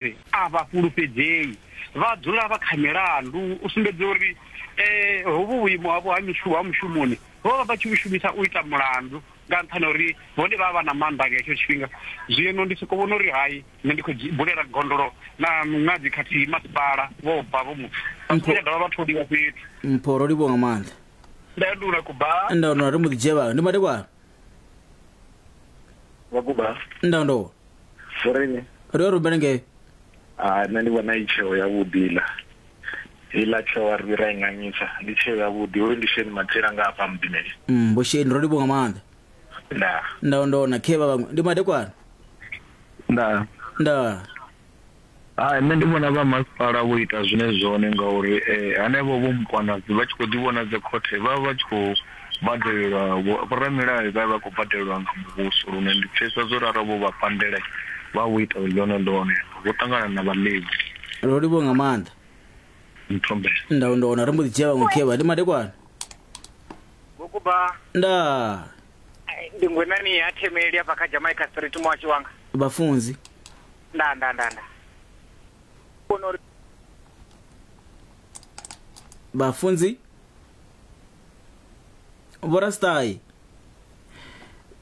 Vhadededzi a vha fhulufhedzei, vha dzula vha kha milandu u sumbedza uri hovhu vhuimo havho ha mishumo ha mushumoni vho vha vha tshi vhu shumisa u ita mulandu nga nṱhani ha uri vhone vha vha vha na maanḓa nga hetsho tshifhinga. Zwino ndi sokou vhona uri hai nṋe ndi khou bulela gondolo na miṅadzi khathihi masipala vho bva vho muthu vha songo tsha dovha vha tholiwa fhethu. Mpho, Ro livhuwa nga maanḓa. Ndandula, Kuba. Ndandula, Ri mbo ḓi dzhia vhaṅwe. Ndi madekwana. Vho Kuba. Ndandula. Vhoreni. Ro rubele ngei. Ah, nṋe ndi vhona i tsheo ya vhuḓi la. Ila tsheo a ri ra inganyisa, ndi tsheo ya vhuḓi. Hoyu ndi Shane Mathela nga hafha mudimeli. Mm, bo Shane ro livhuwa nga maanḓa. Nda. Nda ndona khe vha vhaṅwe. Ndi madekwana. Nda. Nda. Hai nṋe ndi vhona vha masipala vho ita zwine zwone ngauri hanevho vho mukwanadzi vha tshi kho ḓi vhona dzi khothe vha vha tshi khou badelelwa vhoramilayo vha vha khou badelelwa nga muvhuso lune ndi pfhesesa zwo ralo vho vha pandela vha vho ita ḽone ḽone vho ṱangana na vhaḽevi ro livhuwa nga maanḓa mthombela nda nda wana ri mbo ḓi dzhia vhaṅwe khevha ndi madekwana Vhokuba nda ndi ngwenani ya themeli afha kha Jamaica Street muhasho wanga. vhafunzi Ndaa, ndaa, ndaa, ndaa. U vhona uri. vhafunzi vhorastai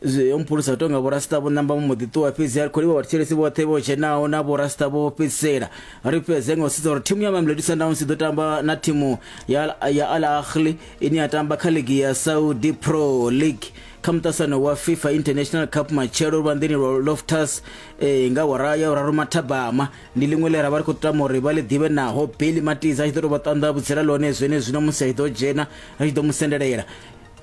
zwi mphulusa tonga vhorasita vho namba mbo ḓi ṱuwa fhedzi a ri khou livha vhathetshelesi vhoṱhe vho dzhenaho na vhorasita vho fhedzisela ri fhedze nga u sedza uri thimu ya mamelodi sundowns i ḓo tamba na thimu ya ya al ahli ine ya tamba kha ligi ya saudi pro league kha muṱasano wa fifa international cup matshelo luvhanḓeni lwa loftus ee nga awara ya vhuraru mathabama ndi ḽiṅwe ḽe ra vha ri khou tama uri vha ḽi ḓivhe naho beli matiza a tshi ḓo tou vha ṱanḓa vhutsila ḽone zwenezwino musi a tshi ḓo dzhena ri tshi ḓo mu sendelela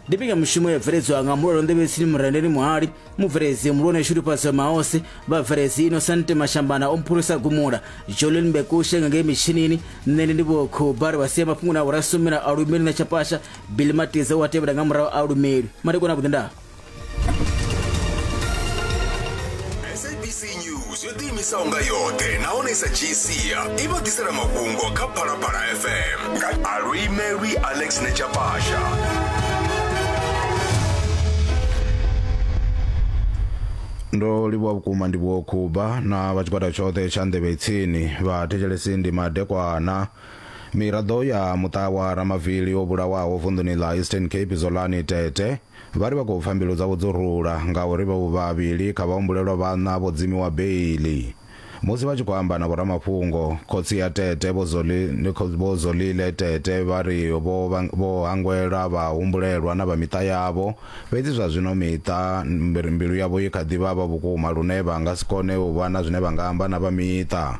ndi mbekanyamushumo ya bveledzwa nga mulalo nḓevhetsini murendeni muhali mubveledzi mulwane shudufhadzo maose vhabveledzi inosante mashambana o mphulusa gumula jolin mbekushe nga ngei mitshinini nṋe ndi ndi vhokhuba ri vha sia mafhungoni a vhorasumela a lumeli na tshapasha bili matiza u a tevhela nga murahu a lumeli madekwana vhuḓi ndaa sabc news yo ḓiimisaho nga yoṱhe nahone sa gc i vha ḓisela mafhungo kha phalaphala fm nga alwimelwi alex nechapasha ndo livhuwa vhukuma ndi vho khuba na vha tshigwada tshoṱhe tsha nḓevhe tsini vha thetshelesi ndi madekwana miraḓo ya muṱa wa ramavili o vhulawaho vunḓuni ḽa eastern cape zolani tete Vha ri vha khou pfa mbilu dzavho dzo rula ngauri vhavho vhavhili kha vhahumbulelwa vhaṋa vho dzimiwa beiḽi. Musi vha tshi khou amba na vhoramafhungo, khotsi ya Tete, Vho Zolile, Vho Zolile Tete vha ri vho vho hangwela vhahumbulelwa na vha miṱa yavho, fhedzi zwa zwino miṱa mbilu yavho i kha ḓi vhavha vhukuma lune vha nga si kone u vha na zwine vha nga amba na vha miṱa.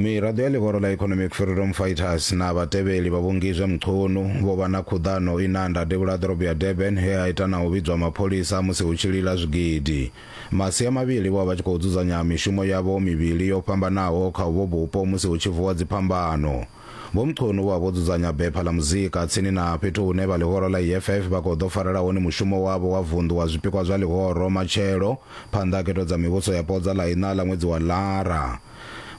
miraḓo ya ḽihoro ḽa economic freedom fighters na vhatevheli vha vhongizwe mchunu vho vha na khuḓano i na nda devhula ḓorobo ya durban he a ita na u vhidzwa mapholisa musi hu tshi lila zwigidi masia mavhili vho vha vha tshi khou dzudzanya mishumo yavho mivhili yo fhambanaho kha uvho vhupo musi hu tshi vuwa dziphambano Vho Mchunu vho vha vho dzudzanya bepha ḽa muzika tsini na fhethu hune vha ḽihoro ḽa EFF vha khou ḓo farela hone mushumo wavho wa vunḓu wa zwipikwa zwa ḽihoro matshelo phanḓa ha khetho dza mivhuso yapo dza ḽa iṋa ḽa ṅwedzi wa Lara.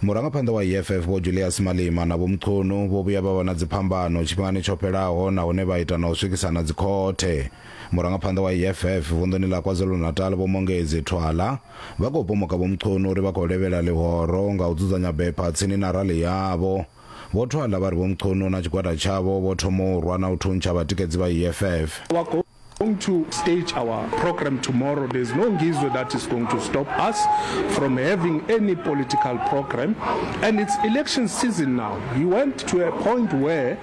Murangaphanḓa wa EFF Vho Julias Malema na Vho Mchunu vho vhuya vha vha na dziphambano tshifhingani tsho fhelaho nahone vha ita na u swikisana dzikhothe. Murangaphanḓa wa EFF vunḓuni ḽa KwaZulu-Natal Vho Mongezi Thwala vha khou pomoka Vho Mchunu uri vha khou levhela ḽihoro nga u dzudzanya bepha tsini na rali yavho. Vho Thwala vha ri Vho Mchunu na tshigwada tshavho vho thoma u rwa na u thuntsha vhatikedzi vha EFF. We are going to stage our programme tomorrow, there's no Ngizwe that is going to stop us from having any political programme and it's election season now. He went to a point where